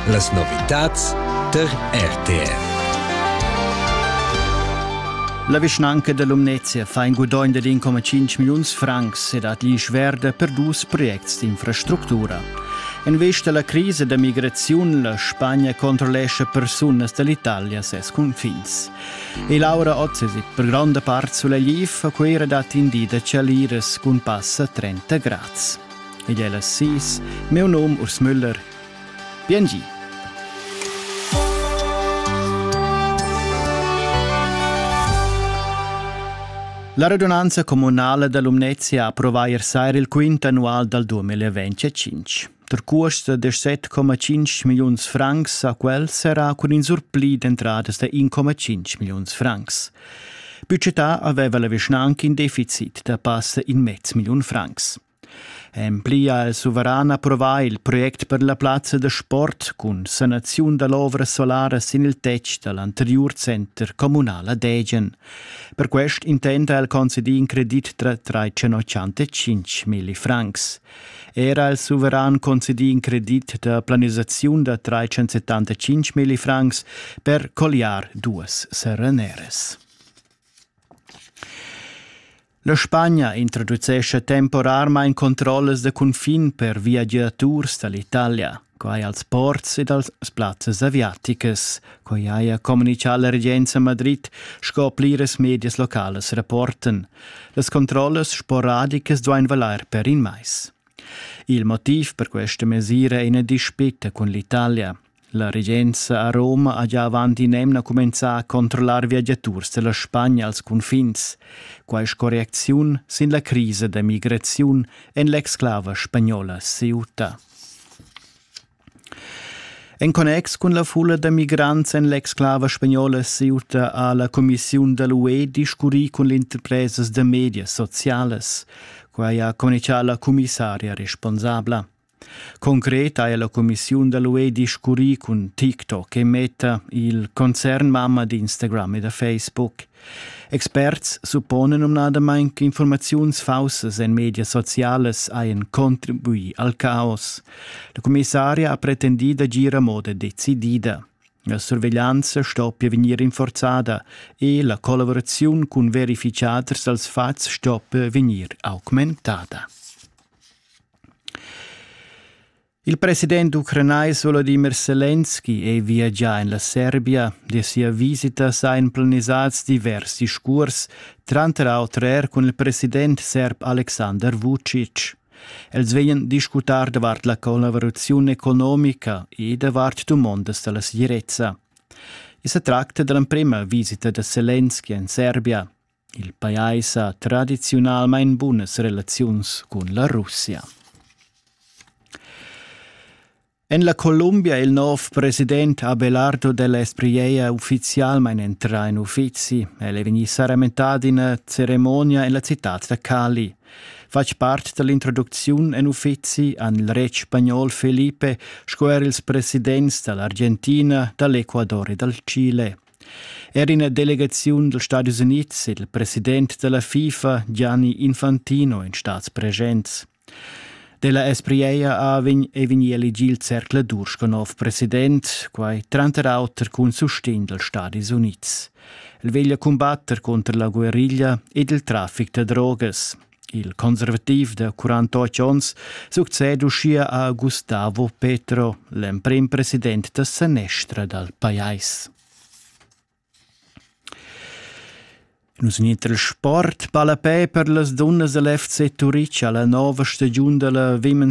Las novitads tar RTR. La vischnanca da Lumnezia fa in gudogn dad 1,5 milliuns francs e dat gli schverda per dus projects d'infrastructura. En vista alla crisi da migraziun, la Spagna controllescha persunas dall'Italia ses confins. E Laura Otzesit per granda part sulla Liv a Cuira dat in di da Chaliras cun passa 30 grads. ed ella sis, meu nom Urs Müller. Biengi! La radunanza comunale da Lumnezia approvà ier sera il quint annual dal 2025. Der Kurs de 17,5 milliuns francs a quel serà cun in surpli d'entradas de 1,5 milliuns francs. Budgetà aveva la vischnanca in deficit da passa in mezz million francs. En pli ha el suveran approvà il project per la plazza da sport cun sanaziun da l'ovra solara sin il tetg da l'anteriur center communal a Degen. Per quest intent ha el concedì in credit tra 385 milli francs. Era il suveran concedì in credit da planisaziun da 375 milli francs per colliar duas sereneres. La Spagna introducescha temporarmain controllas da cunfin per viagiaturs da l'Italia, quai als ports ed als plazzas aviaticas, quai haja communitgà la regenza Madrid, sco pliras medias localas rapportan. Las controllas sporadicas duain valair per in mais. Il motiv per questa mesira è ina dispita cun l'Italia. La regenza a Roma ha gia avant in'emna cumenzà a controllar viagiaturs da la Spagna als cunfins, quai sco reacziun sin la crisa da migraziun en l'exclava spagnola Ceuta. En connex cun la fulla da migrants en l'exclava spagnola Ceuta ha la Commissiun da l'UE discurrì cun l'interpresas da medias socialas. Quai ha communichà la commissaria responsabla. Concret haja la cumissiun da l'UE discurrì cun TikTok e Meta, il concernmamma d'Instagram e da Facebook. Experts supponan numnadamain ch'infurmaziuns faussas en medias socialas hajan contribuì al caos. La commissaria ha pretendì d'agir a moda decidida. La surveglianza stoppia vegnir rinforzada e la collaboraziun cun verificaders dals fatgs stoppia vegnir augmentada. Il president ucranais Volodimir Selenski è viagià en la Serbia e sia visita sajan planisads divers discurs, tranter auter er cun il president serb Alexander Vucic. Els vegnan discutar davart la collaboraziun economica e davart dumondas da la segirezza. I sa tracta da l'emprima visita da Selenski en Serbia. Il pajais ha tradiziunalmein bunas relaziuns cun la Russia. En la Columbia il nov president Abelardo della Espriella ufficialmein entra in uffizi. El è vegni saramentad ina ceremonia en la citad da Cali. Fatg part dall'introducziun en uffizi han il retg spagnol Felipe sco er ils presidents dall'Argentina, dall'Ecuador e dal Chile. Er ina delegaziun dals Stadis Unids ed il president da la FIFA Gianni Infantino èn stads presents. Della Espriella Avin è vegnì elegì il zercladur sco nov president, quai tranter auter cun sustegn dals Stadis Unids. El veglia cumbatter contro la guerriglia ed il traffic da drogas. Il conservativ da 48 onns succeda uschia a Gustavo Petro, l'emprim president da sanestra dal pajais. Nus in il sport palapè per las dunnas del FC Turic alla nova stagiun della Women's